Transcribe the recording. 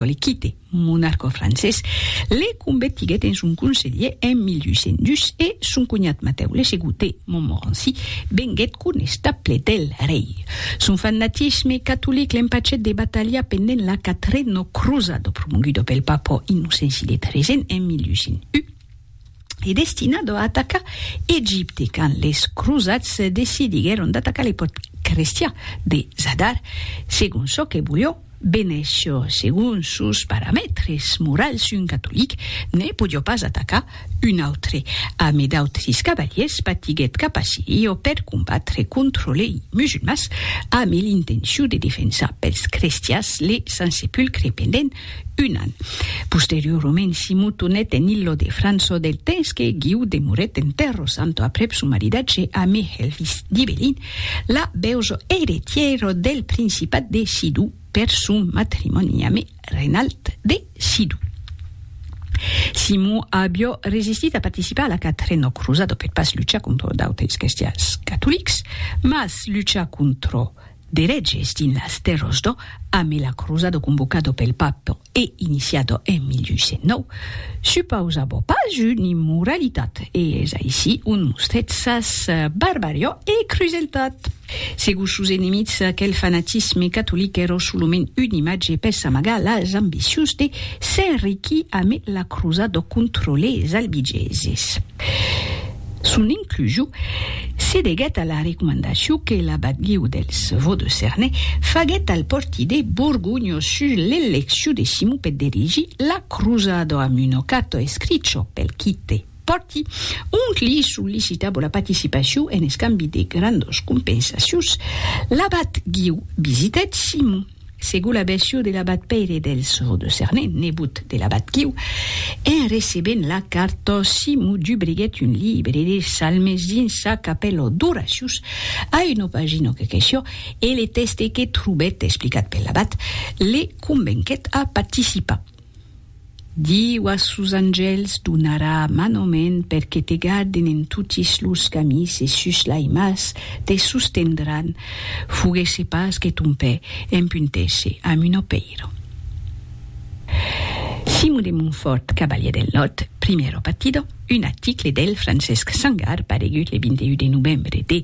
L'Equite, monarca francés, le convertiguèt en son conselhier en 1802 e son conhat Matèu le Segotè, Montmorency, venguèt conestable del rei. Son fanatisme catolic l'empachèt de batalhar pendent la Quatrena Crosada, promoguda pel papa Innocenci de Tresen en 1801. e destinado a atacar Egipte quand les crosats decidiguèron d'atacar le pòrt crestian de Zadar segon çò que volió Venecio, segon sos paramètres morals un catolic ne podió pas atacar un autre. Ame d'autres cavaliers patiguèt cap a Sirio per combatre contra lei musulmans ame l'intencion de defensar pels crestians le Sant Sepulcre pendent Un an. Posteriorament si motonèt en illo de Franço del temps que Guiu demorèt en Tèrro Santo aprèp son maridatge amb Helvis d'Ibelin, la beuzo eretièro del principat de Sidou per son matrimòni ame Renald de Sidou. Simon avió resistit a participar a la quatrena crosada per pas luchar contra d'autres crestians catolics, mas luchar contra D'eretges dins las tèrras d'Ò amé la crosado convocado pel Papa e iniciado en 1809, supausabo pas un immoralitat e es aicí ont mostrèt sas barbarió e cruseltat. Segur sos enemics aquel fanatisme catolic èro solament un imatge per s'amagar las ambicions de s'enriquir amé la crosado contra les albigeses. Son inclusiu se deguèt a la recomandacion que l'abat Guiu dels Vaux-de-Cerne faguèt al portider borgonho sus l'eleccion de Simon per dirigir la crosada amb un ocato escricho pel quite porti, ont li sollicitabo la participacion en escambi de grandas compensacions. L'abat Guiu visitèt Simon. Segur la bèsciu de l'abat Pèire del Sò de Cernè, nebot de l'abat Quiu, en recebent la carta, Simon dubriguèt un libre de salmes dins sa capèla d'oracius, a una pagina que queció, e le tèxte que trobèt explicat per l'abat, le convenquèt a participar. Diu a sos angèls donarà manament per que te garden en totis los camins e sus l'aimas te sostendràn, foguèsse pas que ton pè empuntèsse amb un opèiro. Simon de Montfòrt, cavalièr del Nòrd, Primero Partido, un article del Francesc Sangar paregut le 21 de novembre de